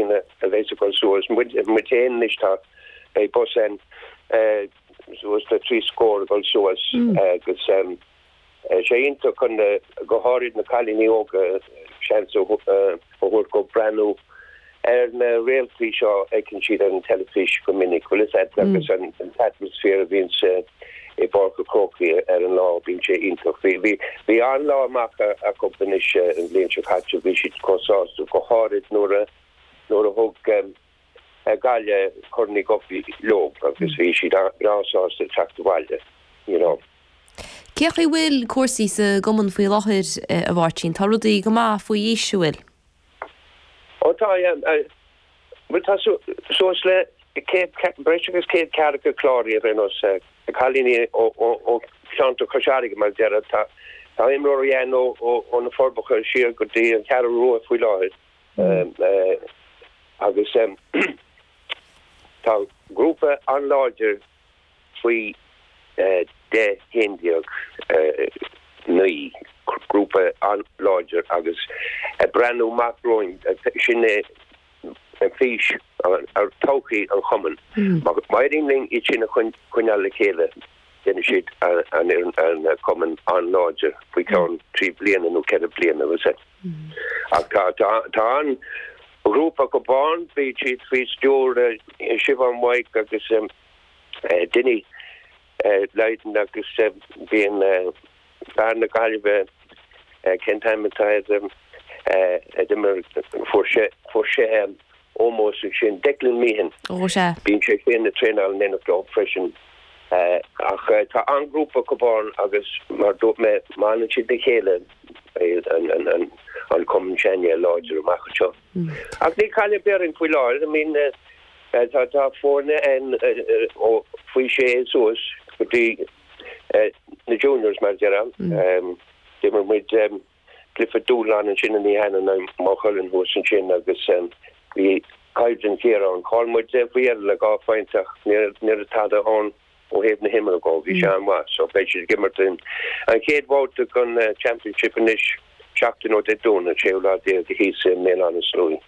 ina a bheas a dhul suas muid muid féin anois tá beidh bus ann suas le trí scór a dhul suas agus sé iontach chun go háirid na cailíní óga seans a thabhairt dhóibh breathnú ar na réaltaí seo a fheiceann siad ar an teilifís go minic bhfuil 's a'd agus an atmosphere a bhíonns i bPáirc an Chrócaigh ar an lá. Bíonn sé iontach. Bhí, bhí, bhí an-lá amach acu anois an bhliain seo caite. Bhí siad chomh sásta, go háirid nuair a, nuair a thug Gaillimh Corn Uí Dhubhthaigh leob agus bhí siad breá sásta teacht abhaile, you know. Cé chaoi bhfuil cúrsaí sa gCumann faoi láthair, a Mháirtín? Tá rudaí go maith faoi aois, an bhfuil? Ó tá, bhuel tá suas le céad, breis agus céad ceathracha cláraithe ar aon nós, cailíní ó cheantar Chois Fharraige mar a déarfá. Tá imreoirí ann ó na Forbacha siar go dtí an Cheathrú Rua faoi láthair agus tá grúpa an-láidir ann. faoi deich haon déag naoi grúpa an-láidir agus ag breathnú amach romhainn, sin é fís todhchaí an Chumainn. Má éiríonn linn iad sin a choinneáil le chéile déanfaidh siad an Cumann an-láidir faoi cheann trí bliana nó ceithre bliana. Ach tá ghrúpa acub ann, bíonn siad faoi stiúr Siobhán Mhaidhc agus Dinny Lydon agus bíonn fear na Gaillimhe cén t-ainm atá air, a d'imir, fuair sé ómós ansin, Declan Meehan, bíonn sé féin a traenáil in éineacht leo freisin. Ach tá an-ghrúpa acub ann agus mar a dúirt mé má fhanann siad le chéile, beidh an Cumann sin an-láidir amach anseo. Ach níl caill ar bith orainn faoi láthair, I mean tá foirne ann ó faoi sé suas go dtí na juniors mar a déarfá. D'imir muid. cluiche dúshláin ansin an oíche cheana i Maigh Cuilinn thuas ansin agus bhí coimhlint ghéar ann. Chaill muid faoi dheireadh le dhá phointe ach ní raibh tada ann ó thaobh na himeartha dhó. Bhí sé an-mhaith so beidh siad ag imirt an chéad bhabhta den Championship anois seachtain ó Dé Domhnaigh an séú lá déag thíos i mBéal Átha na Sluaighe.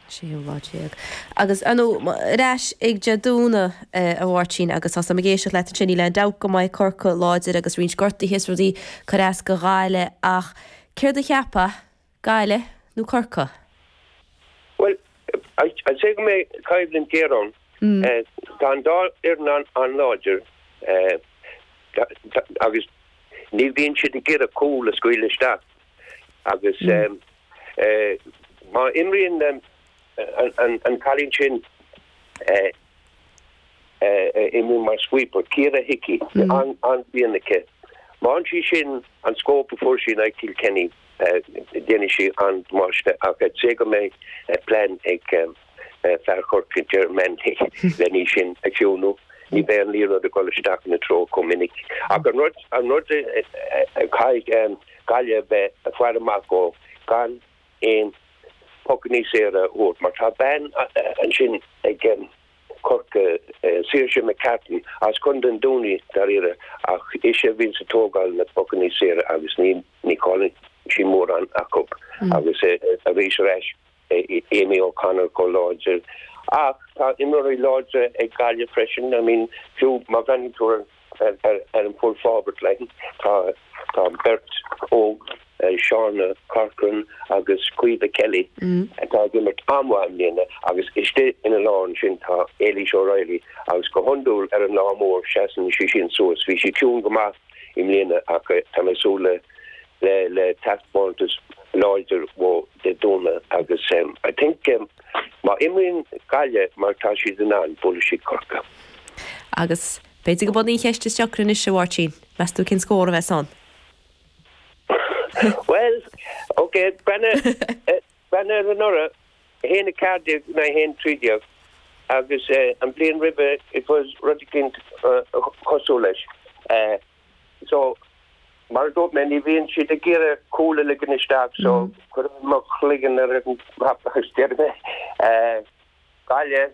séú lá déag. Agus ar ndú, ar ais ag Dé Domhnaigh, a Mháirtín, agus tá 's a'm ag éisteacht leat ansin, níl aon dabht go mbeidh Corcaigh láidir agus roinnt gortaithe 's rudaí ag cur as do Ghaillimh ach céard a cheapfá, Gaillimh nó Corcaigh? Bhuel, I'd say go mbeidh coimhlint géar ann. Tá an dá fhoireann an-láidir agus ní bhíonn siad ag iarraidh cúl a scaoileadh isteach. agus má imríonn an cailín sin a imríonn mar sweeper, Ciara Hickey, an-mhianach. Má fhaigheann sí sin an scóip a fuair sí in aghaidh Kilkenny, déanfaidh sí an-damáiste ach cé go mbeidh plean ag fear Chorcaigh Ger Manley len í sin a chiúnú. Ní bheidh an liathróid ag dul isteach ina treo chomh minic. Ach an rud an rud a chaithfidh Gaillimh a bheith ag faire amach dó gan aon pucannaí saora a thabhairt mar tá bean ansin ag Corcaigh, Saoirse McCartan as Contae an Dúin í, dáiríre, ach ise a bhíonns ag tógáil na bpucannaí saora agus ní chailleann sí mórán acu agus arís ar ais. Amy O'Connor chomh láidir. Ach tá imreoirí láidre ag Gaillimh freisin. I mean, fiú má bhreathnaíonn tú ar an full forward line, tá beirt óg, Shannon Corcoran agus Caoimhe Kelly, atá ag imirt an-mhaith i mbliana. Agus istigh ina lár ansin tá Ailish O'Reilly agus go hiondúil ar an lá mór seasann sí sin suas. Bhí sí ciúin go maith i mbliana ach tá mé ag súil le le le taispeántas láidir uaithi Dé Domhnaigh agus I think má imríonn Gaillimh mar tá siad in ann buailfidh siad Corcaigh. Agus b'fhéidir gurb í an cheist is deacra anois, a Mháirtín, meas tú cén scór a bheas ann? Bhuel, ok, breathnaigh ar anuraidh, 1, 14 in aghaidh 1, 13 agus an bhliain roimhe it was rud eicínt chosúil leis. so mar a dúirt mé ní bhíonn siad ag iarraidh cúl a ligean isteach so cuirfidh mé mo chloigeann ar an mbloc agus déarfaidh mé Gaillimh,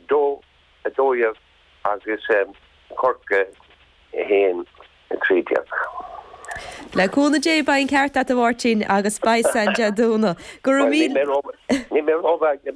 2, 12 agus Corcaigh 1, 13. Le cúnamh Dé beidh an ceart agat a Mháirtín agus beidh a fhios againn Dé Domhnaigh. Go raibh míle. Níl mé rómhaith, níl mé rómhaith.